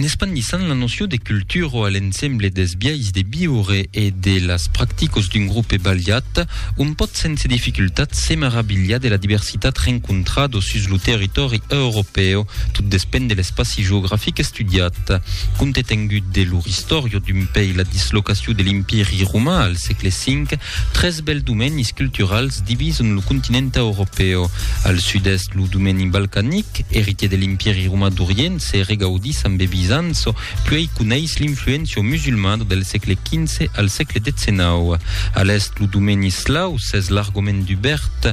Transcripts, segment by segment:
En espandissant la noció de cultura a l'ensemble dels biais de viure e de las practicas d'un grupe balhat, on pòt sense dificultat se maravilhar de la diversitat rencontrada sus lo territòri europèu, tot despend de l'espaci geografic estudiat. Compte tengut de lor istòria d'un pei la dislocacion de l'Empiri roman al sègle V Tres bèls domenis culturals divison lo continent europèu. Al sud-èst, lo domeni balcanic, eritier de l'Empièri romà d'Orient, se regaudís amb e Bizanço, puèi coneis l'influéncia musulmada del sègle XV al sègle XIX. A l'èst, lo domeni eslau s'es largament dubèrt,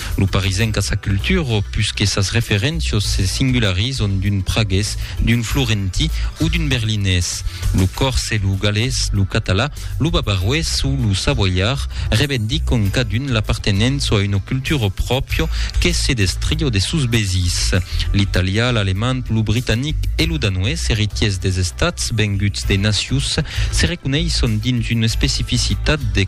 Lo parisenc a sa cultura o pus que sas referéncias se singularizan d'un pragués, d'un florentí o d'un berlinés. Lo còrse, lo galés, lo català, lo bavaroés o lo savoiar revendican cadun l'apartenença a una cultura pròpia que se destria de sos vesins. L'italià, l'alemand, lo britanic e lo danoés, eritiers des estats venguts de nacius, se reconeissan dins una especificitat de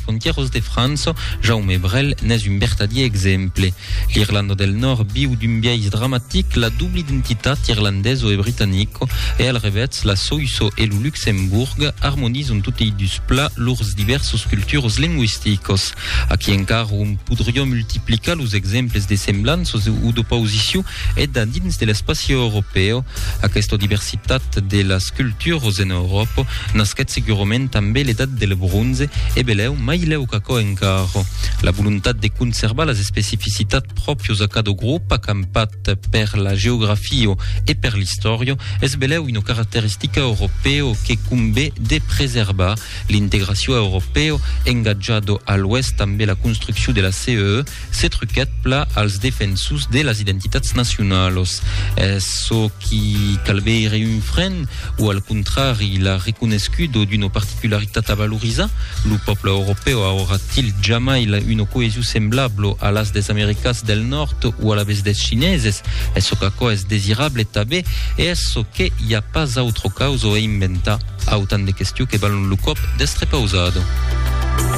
Frontièros de França, Jaume Brel n'es un vertadier exemple. L'Irlanda del Nòrd viu d'un biais dramatic la dubla identitat irlandeso e britanico e al revètz la Soïsso e lo Luxembourg armonizan totei dus plats lors divèrsos culturos lingüisticos. Aquí encara òm podriá multiplicar los exemples de semblanças o d'opausicion E da dins de l'espaci europèu, aquesta diversitat de las culturos en Euròpa nasquèt segurament tanben l'edat del bronze e belèu mai lèu qu'aquò encara. La volontat de conservar las especificitats pròpios a cada grop acampat per la geografia e per l'istòria es belèu una caracteristica europèu que convé de preservar. L'integracion europèu engatjada a l'oèst tanben la construccion de la CEE, Se truquèt pla als defensors de las identitats nacionalas. Es çò qui calveire un fren o al contrari la reconescudo d'una particularitat a valorizar? Lo pòble europèu aurà-t-il jamai una coesion semblabla a las des Americas del Nòrd o alavetz des Chineses? Es çò qu'aquò es desirable tabé e es çò que i a pas autra causa e inventar? Autant de questions que valon lo còp d'estre pausada.